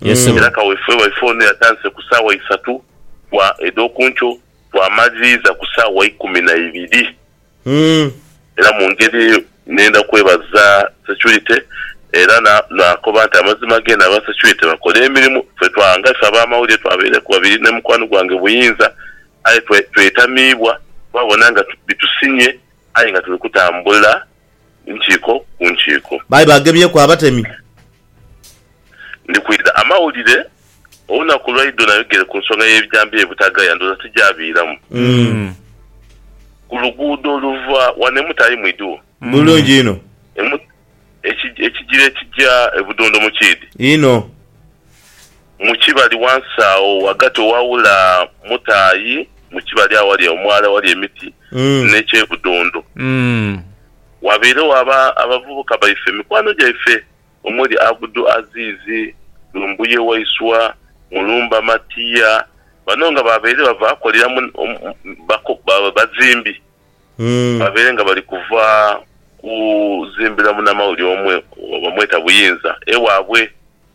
Yes sebo. Era kaweefube waife ono yatandise ku saawa isatu bwa edh'okunkyo bw'amaliriiza ku saawa ikumi na ibiri. Era mu ngeri eyo nenda kwebaza securite era na naakoba nti amazima ghe n'aba securite bakola emirimu ffe twa nga ife ab'amawulire twabaireku babiri ni mukwano gwange Buyinza aye twe twetamiibwa twabona nga bitusinye aye nga tuli kutambula nkiiko ku nkiiko. Baali baagemyeku abatemi. Ndi kwidha amawulire olunaku lwa idho nayogere ku nsonga y'ebijambiya ebutagaya, ndowooza tigyaviiramu. Ku luguudo oluva wano e Mutaayi mwidhiwo? Bulungi inho. E Mut. Eki, ekigira ekigya e Budondo mukiidhi? Inho. Mu kibali wansi agho ghagati owaawula Mutaayi mu kibali aghali omwala aghali emiti n'eky'e Budundu, waabairegho aba abavubuka baife, mikwano gyaife omuli Abdu Aziz, Lumbuye Waiswa, Mulumba Matia, bano nga baabaire bava akolera mu bako bazimbi, baabaire nga bali kuva kuzimbira munamawulire omu bamweta Buyinza ewaabwe.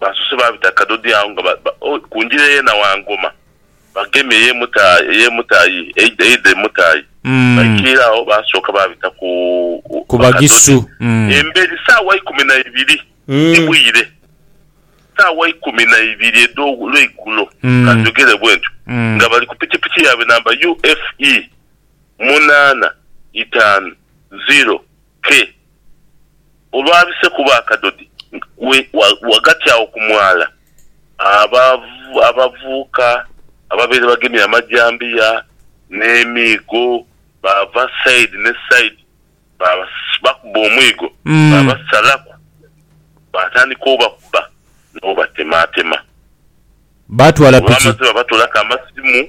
baasoose baabita Kadodi agho nga ba, ba, oh, ku ngira eye Nawangoma, bagemye eye Muta, eye Mutayi, eidha, eidha e Mutayi. Mm. Baikaire agho baasooka baabita ku, u, Ku Bagisu. Bakadodi. Mm. Emberi saawa ikumi na ibiri ni Mm. bwire, saawa ikumi na ibiri edho lweigulo, Mm. ka njogere bwentyo, Mm. nga bali ku pikipiki yaabwe namba UFE munaana itaanu ziro ke, olwabise kuba akadodi ghagati agho ku mwala, abavubuka ababaire bagemye amajambiya n'emiigo baava saidi ni saidi bakuba omwigo baabasalaku, baatandika obakuba n'obatematema. Olwamaze baabatoolaku amasimu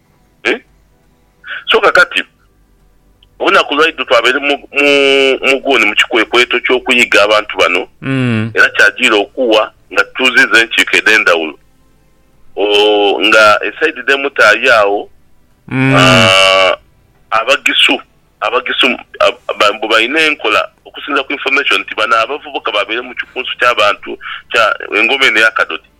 So kakati, olunaku lwaidho twabaire mu, mu, mu guuni mu kikwekweto ky'okuyiga abantu bano, era kyajiire okugha nga tutuuzizza enkiiko edh'endhawulo. Oh, nga esaidi dh'emu tayo agho, ah, Abagisu, Abagisu, ba, mbu balina enkola, okusinziira ku information, nti bano abavubuka babaire mu kikunsu ky'abantu kya engoma eno eya Kadodi.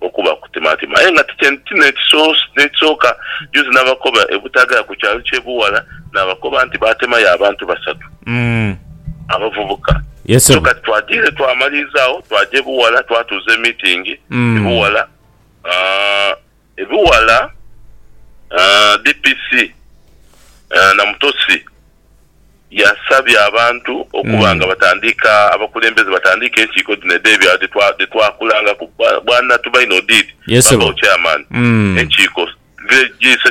okuba kutimatima aye nga ti n'ekisooka. Juuzi nabakoba e Butagala ku kyalo ky'e Buwala nabakoba nti baatemayo abantu basatu abavubuka. So kati twadiire twamaliriza agho twaja e Buwala twatuuza e meeting e Buwala. E Buwala DPC Namutosi. Yasabye abantu okuba nga batandiika, abakulembeze batandiike enkiiko dhino edh'ebyalo dhe twa, dhe twakulangaku. Bwa, Bwana Tubaine Odid, Yes, Ssebo. Babawo Chairman. Mm. Enkiiko, Village G, Section.